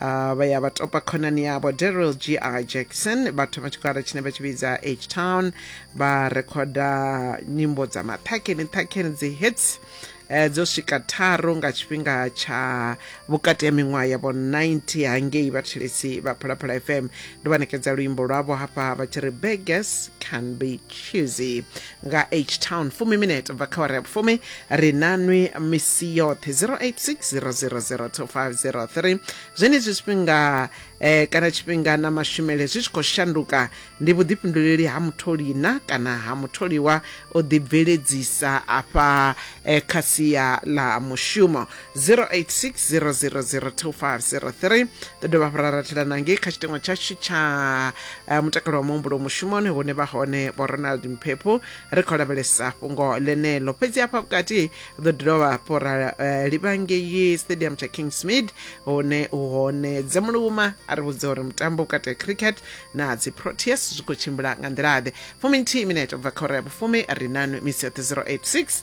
Uh, vha ya vha topa khonani yavho daryl g r jackson vha thoma tshigwada tshine vha tshi vhidza h town vha rekhoda nyimbo dza maṱhakheni ṱhakheni dzi hits eh, dzo swika tharu nga tshifhinga tsha vhukati ya miṅwaha yavho 90 hangei vhathelesi vha phalaphala fm ndo vha ṋekedza luimbo lwavho hafha vha tshi ri beggars can be choosy nga h town fumi minete bva kha wara ya vhufumi ri na nwi misi yoṱhe 0860002503 zwenezwi zwifhinga eh, kana tshifhinga na mashumele zwi tshi khou shanduka ndi vhuḓifhinduleli ha mutholi na kana ha mutholiwa o ḓibveledzisa afha eh, kha sia ḽa mushumo 0860002503 ḓo dovha hafhu ra ratela na ngei kha tshiteṅwa tshashu tsha eh, mutakalo wa muhumbulo mushumoni hune vha hone vho ronald mphepho ri khou lavhelesa fhungo ḽeneḽo fhedzi hafha vhukati ḓo dovha hafhu ra eh, livha ngei stadium tsha kingsmid hune u hone dzemuluma a ri vhudza uri mutambo vhukati ha cricket na dzi proteas zwi khou tshimbila nga nḓila-ḓe fumi nthihi minete ubva kha ora ya vhufumi ri nanu misi yoṱhe 086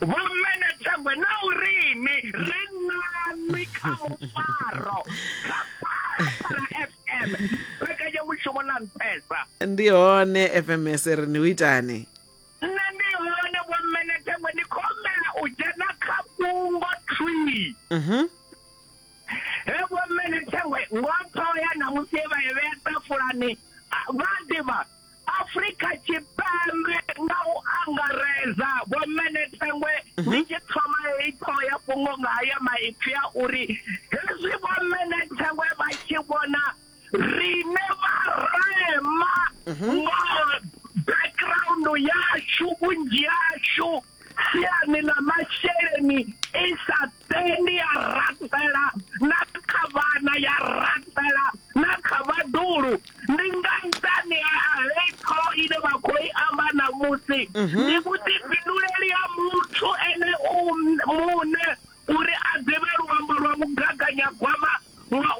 Vho Mmene Thengwe na u rini ri nani kha mufaro kha Phalaphala FM mbekanyamushumo na nṱhesa ndi hone fms ri ni u itani nṋe ndi hone Vho Mmene Thengwe ndi khou humbela u dzhena kha fhungo thwii Mhm. he Vho Mmene Thengwe ngoṱho ya ṋamusi ye vha i vhea ṱafulani a- vha ḓivha Afrika Tshipembe nga u angaredza Vho Menethengwe mhm. ndi tshi thoma heyi ṱhoho ya fhungo nga haya maipfi a uri hezwi Vho Menethengwe vha tshi vhona rine vharema mhm. nga background yashu vhunzhi yashu siani ḽa masheleni i sa tendi ya rathela na kha vhana ya rathela na kha vhaḓulu ndi nga nṱhani ha heyi ṱhoho ine vha khou i amba ṋamusi mhm. ndi vhuḓifhinduleli ha muthu ene muṋe Uri a ḓivhe luambo lwa mugaganyagwama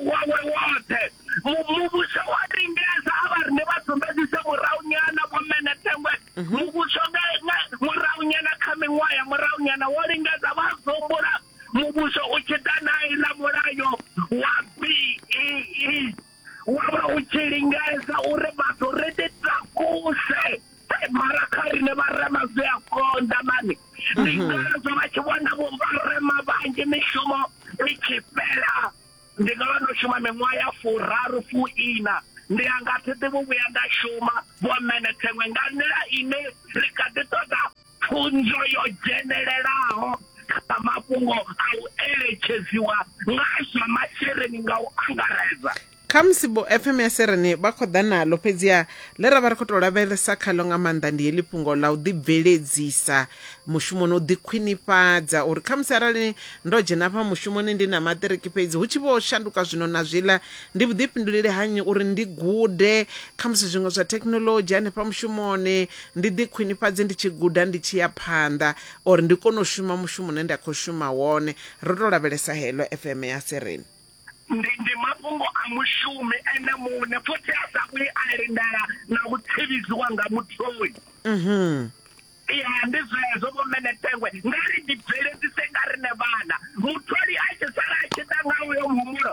wawe woṱhe, muvhuso wo lingedza a vha ri, Ni vha sumbedzise muraunyana, Vho Mene Thengwe. Muvhuso nga, nga muraunyana, kha miṅwaha ya muraunyana, wo lingedza vha dzumbula muvhuso u tshi ḓa na iḽa mulayo wa BEE. wa vha u tshi lingedza uri vhathu ri ḓi takuse mara kha riṋe vharema zwi a konḓa mani ndi mhm. ngazwo vha tshi vhona vho vharema vhanzhi mishumo i tshi fhela ndi nga vha ndo shuma miṅwaha ya furaru fuiina ndi a nga thi ḓivhi vhuya nda shuma vho mene theṅwe nga nḓila ine ri kha ḓi ṱoḓa pfunzo yo dzhenelelaho kha mafhungo a u eletshedziwa nga zwa masheleni nga u angaredza. Khamusi vho FM ya Serene vha khou ḓa naḽo, fhedziha ḽe ra vha ri khou tou lavhelesa khaḽo nga maanḓa ndi heḽi fhungo ḽa u ḓibveledzisa mushumoni, u ḓikhwinifhadza uri khamusi arali ndo dzhena afha mushumoni ndi na maṱiriki fhedzi hu tshi vho shanduka zwino na zwiḽa, ndi vhuḓifhinduleli ha nnyi uri ndi gude khamusi zwiṅwe zwa thekhinolodzhi hanefha mushumoni, ndi ḓi khwinifhadze ndi tshi guda ndi tshi ya phanḓa or ndi kone u shuma mushumo une nda kho shuma wone ro to lavhelesa hello FM ya Sereni. Ndi ndi mafhungo a mushumi ene muṋe futhi a sa vhuyi a lindela na u tsivhidziwa nga mutholi. Mhm. Ya ndi zwezwo vho mene Tengwe nga ri ndi bveledzise nga rine vhana mutholi a tshi sala a tshi ḓa nga uyo muhumbulo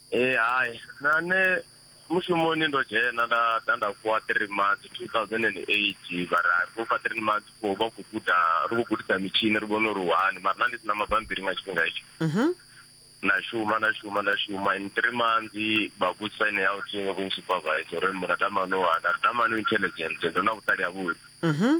ee hai na nṋe mushumoni ndo dzhena nda ḓa nda fhiwa three months two thousand and eight mara ro fha three months fo vha khou guda ri khou gudisa mitshini ri vhone uri wani mara na ndi si na mabambiri nga tshifhinga itsho Mhm. na shuma na shuma na shuma in three months vha vhudzisa ine ya uthi vho supervisor uri mura tamani wana tamani intelligence ndo na vhuṱali ha vhuḓi Mhm.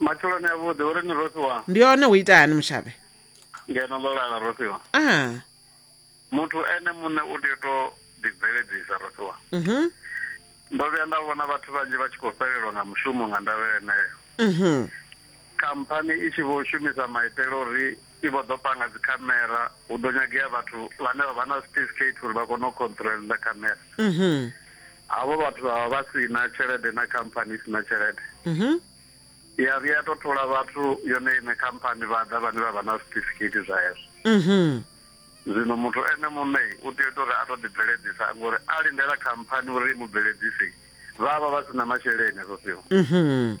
Matshiloni a vhuḓi uri ni rofhiwa. Ndi hone hu ita hani mushavhe? Ngeno ḽo lala rofhiwa. Ah. Muthu ene muṋe u tea u to ḓi bveledzisa rofhiwa. Mhm. Ndo vhuya nda vhona vhathu vhanzhi vha tshi khou fhelelwa nga mushumo nga ndavha yeneyo. Mhm. Khamphani i tshi vho shumisa maitele uri I vho ḓo panga dzikhamera, hu ḓo nyagea vhathu vhane vha vha na certificate uri vha kone u controller khamera. Havho vhathu vha vha vha si na tshelede na khamphani i si na tshelede. Ya vhuya ya tou thola vhathu yone iṋe khamphani vha ḓa vhane vha vha na certificate zwa hezwo. Zwino muthu ene muṋe u tea u ita uri a tou ḓibveledzisa ngori a lindela khamphani uri i mu bveledzise vha vha vha si na masheleni hezwo zwifhinga.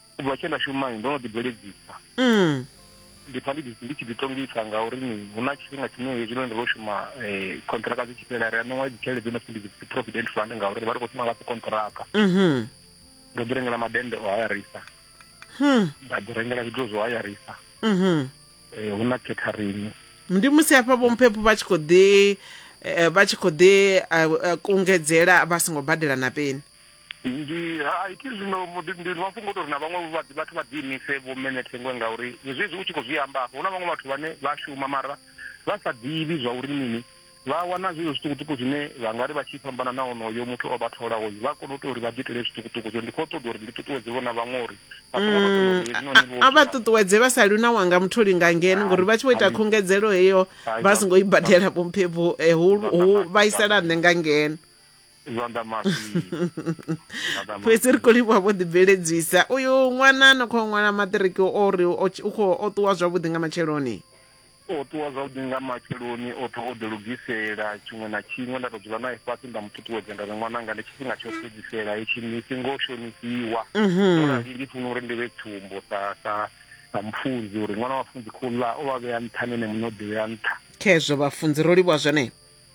u bva tshe nda shumai ndo no ḓibveledzisa mm. ndi pfa ndi tshi ḓitongisa ngauri ni hu na tshifhinga tshine hezwino ndi ro shuma khontraka eh, dzi tshi fhela ri a ṋewa dzi tshelede dzo no pfi ndi dzi provident fund ngauri vha ri khou shuma nga khontraka mm-hmm. ndo ḓi rengela madende o hayarisa hmm. nda ḓi rengela zwithu zwo hayarisa mm-hmm. eh, hu na catering ndi musi hafha vhomphepho vha tshi khou ḓi eh, vha tshi khou ḓi kungedzela vha songo badela na peni ndi hai ke zwino ndi mafhungo tori na vhaṅwe vha vhathu vha ḓi imise vho mene thengwe ngauri zwezwi u tshi khou zwi amba afho hu na vhaṅwe vhathu vhane vha shuma mara vha sa ḓivhi zwa uri mini vha wana zwezwo zwiṱukuṱuku zwine vha nga ri vha tshi fhambana na onoyo muthu o vha tholaho vha kone u tea uri vha ḓi itele zwiṱukuṱuku zwo ndi khou ṱoḓa uri ndi ṱuṱuwedze vhona vhaṅwe uri mm, a vha ṱuṱuwedze vha sa luna wanga mutholi nga ngeno ngori vha tshi vho ita khungedzelo heyo vha songo i badela vhomphe vho eh, hu vhaisala nṋe nga ngeno zwanḓa mafhi Zwanḓa mafhi. fhedzi ri khou livhuwa vho ḓibveledzisa uyu ṅwana no khou ṅwala maṱiriki o ri o tshi- u khou o ṱuwa zwavhuḓi nga matsheloni o ṱuwa zwavhuḓi nga matsheloni o ṱuwa o ḓilugisela tshiṅwe na tshiṅwe nda tou dzula nae fhasi nda mu ṱuṱuwedza nda ri ṅwananga ndi tshifhinga tsho fhedzisela hetshi ni si ngo shonisiwa ndo rali ndi funa uri ndi vhe tsumbo sa sa sa mufunzi uri ṅwana wa funzi khou ḽa o vha vhea nṱha nene muṋe o ḓivhea nṱha khezwo vhafunzi ro livhuwa zwone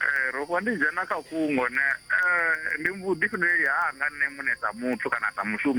Ee, ro vha ndi dzhena kha fhungo ne, ee, ndi vhuḓifhinduleli hanga nṋe muṋe sa muthu kana sa mushumi.